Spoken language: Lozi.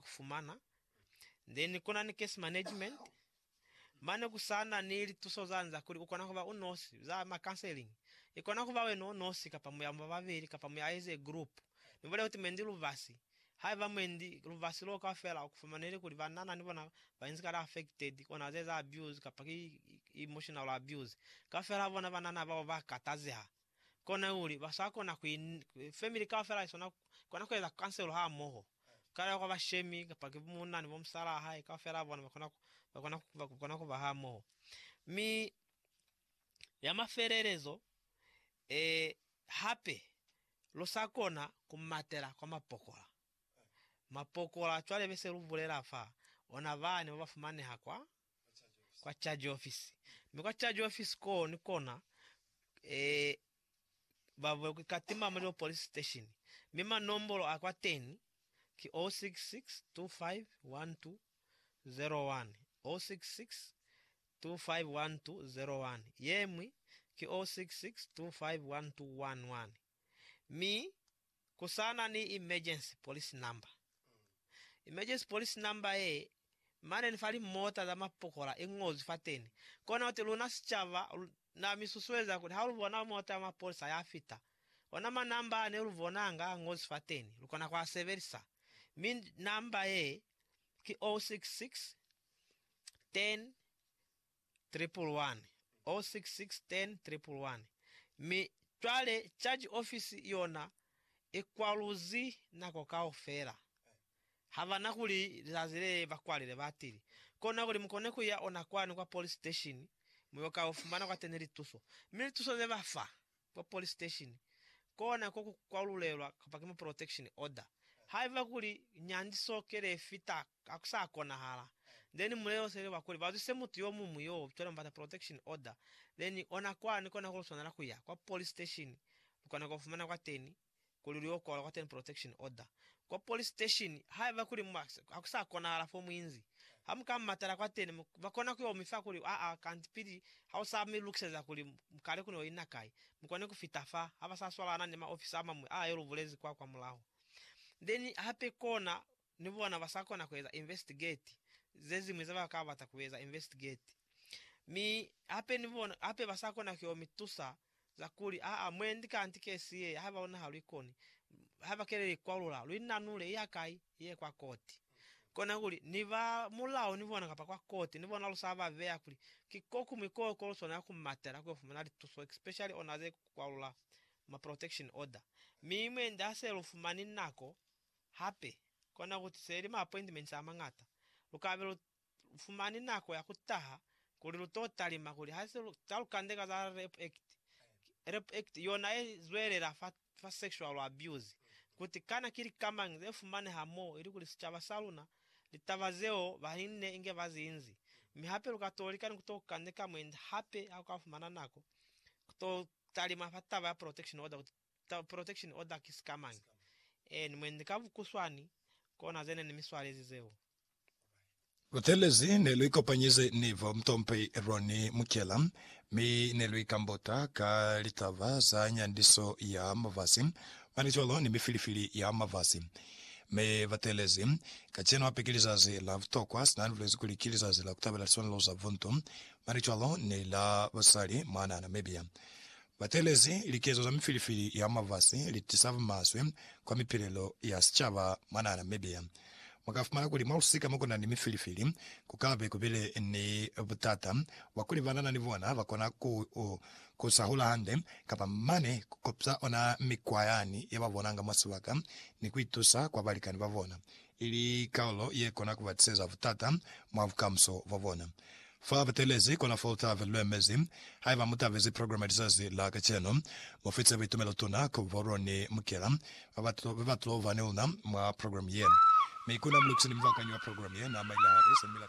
ku fumana, then kuna ni case management, mane ku sa na ni lituso zani za kuli u kona ku ba u nosi, za ma counseling. I kona ku ba wena u nosi kapa mu ya mu ba babeli kapa mu ya as a group. Ni bulela kuti mwendi lubasi, haiba mwendi lubasi loo kaufela ku fumaneli kuli banana ni bona ba inzi kale affected, ona za eza abuse kapa ki emotional abuse, kaufela ha bona banana bao ba katazeha. kona kuli ba sa kona ku family kaufela i sona kona ku eza kanselo ha moho kale kwa bashemi kapa ki muna ni bo musalaa hae kaufela bona ba kona ba kona ba kona ku ba ha moho mi ya mafelelezo e hape lu sa kona ku matela kwa mapokola mapokola cwale be se lu bulela fa ona bani ba ba fumaneha kwa kwa charge office mi kwa charge office ko ni kona eh, bavwe ku katima muli o police station mi manombolo a kwa teni ki 0662512001 0662512001 yemwi ki 0662512011 mi kusana ni emergency police number. Emergency police number ye, mane ni fa limota za mapokola ingozwi fateni. Kona kuti luna sicaba na mi susueza kuli ha lu bona mota ya mapolisa ya fita, ona ma number a ne lu bonanga a ngozwi fateni, lu kona ku a sebelisa. Mi number ye ki 066 10 311, 066 10, 311, mi cwale Charge Office yona i kwaluzi nako kaufela. Ha ba na kuli lizazi le ba kwalile, ba tili, Kona kuli mu kone ku ya ona kwani kwa police station, mu yo ka fumana kwateni lituso. Mi lituso ze ba fa, kwa police station kona ko ku kwalulelwa kapa ki mu protection order. Haiba kuli nyandiso kele ye fita ha ku sa konahala, then mulelo seli wa kuli ba zwise mutu yo muñwi yo cwale mu bata protection order, then ona kwani kona ku lu swanela ku ya kwa police station lu kona ku fumana kwateni kuli lu yo kwalwa kwa Temple Protection Order kwa police station haiba kuli mu ha ku sa konahala fo mu inzi. Ha mu ka matala kwateni, ba kona ku yo mi fa kuli, Aa, kanti pili ha u sa mi lukiseza kuli kale ku ne u ina kai, mu kone ku fita fa. Ha ba sa swalana ni maofisa a mañwi a yo lu bulezi kwa kwamulaho. Then hape kona Ni bona ba sa kona ku eza investigate ze ziñwi ze ba ka bata ku eza investigate. Mi hape ni bona hape ba sa kona ku yo mi tusa za kuli, Aa, mwendi kanti kesi ye, haiba luna ha lu ikoni, haiba ke le li kwalula, lu inanule, i ya kai? I ye kwa koti. Kona kuli, ni ba mulao ni bona kapa kwa koti ni bona lu sa ba beya kuli ki ko kuñwi ko ko lu swanela ku matela ku yo fumana lituso, especially ona ze kwalula ma protection order. Mi mwendi ha se lu fumani nako Hape, kona ku tusa ili ma appointments a mañata, lu kabe lu fumani nako ya ku taha kuli lu to talima kuli ha se lu ta lu kandeka za Rape Act, Rape Act yona ye zwelela fa fa sexual abuse, kuti kana ki lika mañi ze fumaneha mo ili kuli sicaba sa luna litaba zeo ba li nne inge ba zi inzi. Mi hape lu ka to lika ni ku to kandeka mwendi hape ha lu ka fumana nako ku to talima fa taba ya protection order kuti ta protection order ki sikamañi and mwendi ka vukuswani kona zene ni mi swalezi zeo. Lutelezi ne lu ikopanyize ni bo Mtompi Ronnie Mukyela mi ne lu ikambota ka litaba za nyandiso ya mafasi, mane cwalo ni mifilifili ya mafasi. Mi batelezi, kacenu hape ki lizazi la butokwa, sina ni bulezi kuli ki lizazi la kutabela liswanelo za buntu, mane cwalo ni la basali mwana Namibia. Batelezi likezo za mifilifili ya mwa lifasi litisa bumaswe kwa mipilelo ya sicaba mwa naha Namibia. Mwakafumana kuli mwa lusika mokunani mifilifili kukabe kubile ni butata bwakuli banana ni bona bakona ku ku sahula hande kapa mane kukopsa ona mikwa yani yababonanga mwa sibaka ni kuitusa kwa balikani babona ili kalulo ye kona ku ba tiseza butata mwa bukamuso bwa bona. Fa ba teelezi kona fo lutabe lu emezi. Haiba mu tabezi programe ya lizazi la kacenu, mu fitse buitumelo tuna ku bo lwa ni mukela ba ba tlo, ba ba tlo ba ni luna mwa programe ye. Mi kuna mu lukiseni mubakanywi wa programe ye, na Maila Harris, ni mila ka.